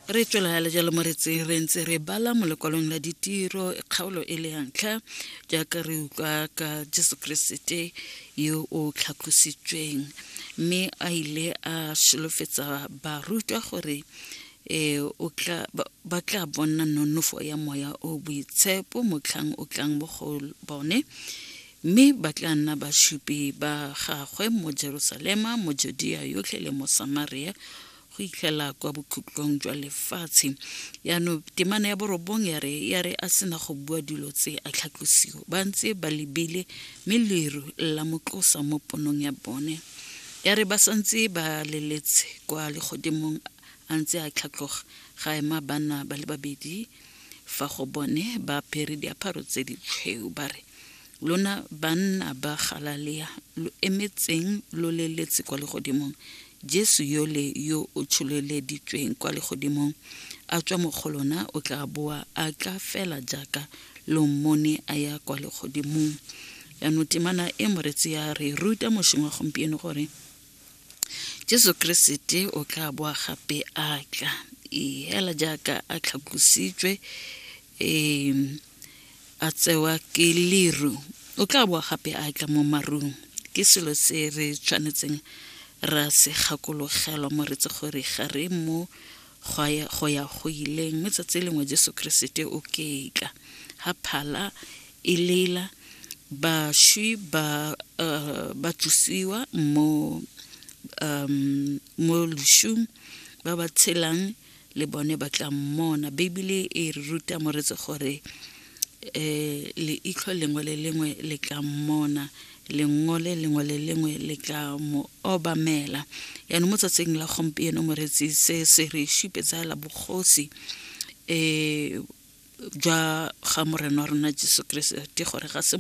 re tswelela le jalo mo re tseng re ntse re bala mo lekwalong la ditiro kgaolo e le yantlha jaaka re utlwa ka jesu keresete yo o tlhatlositsweng mme a ile a solofetsa barutwa gore um ba tla bona nonofo ya moya o boitshepo motlhang o tlang mo go bone Mme ba tla nna basupi ba gagwe mo Jerusalema, mo Judea yotlhe le mo Samaria, go itlhela kwa bokhutlong jwa lefatshe yaanong temana ya borobong ya re ya re a sena go bua dilo tse a tlhatlosiwa ba ntse ba lebile mme leru la motlosa mo ponong ya bone ya re ba santse ba leletse kwa legodimong a ntse a tlhatlhoga ga ema bana ba le babedi fa go bone ba apere diaparo tse di tshweu ba re lona banna ba galalea lo emetseng lo leletse kwa legodimong jesu yole yo o tsholeleditsweng kwa legodimong a tswa mo go lona o tla boa a tla fela jaaka lo mmone a ya kwa legodimong yaanong temana e moretsi ya re ruta mošeng wa gompieno gore jesu keresete o tla boa gape a tla ee, hela jaaka a tlhatlositswe um a tsewa ke leru o tla boa gape a tla mo marung ke selo se re tshwanetseng ra se gakologelwa moretsi gore ga re mo gwa ya go ya go ileng mme tsatsi lengwe jesu keresete o ketla ga phala e lela bašwi ba uh, ba tšusiwa mo um mo lešung ba ba tshelang le bone ba tla mmona beibele e re ruta moretse gore um leitlho lengwe le lengwe le tla mmona lengo le lengwe le lengwe le tla mo obamela yaanong mo tsatsing la gompieno moretsi se se re supetsaela bogosi um jwa ga morena wa rona jesu keresete gore ga se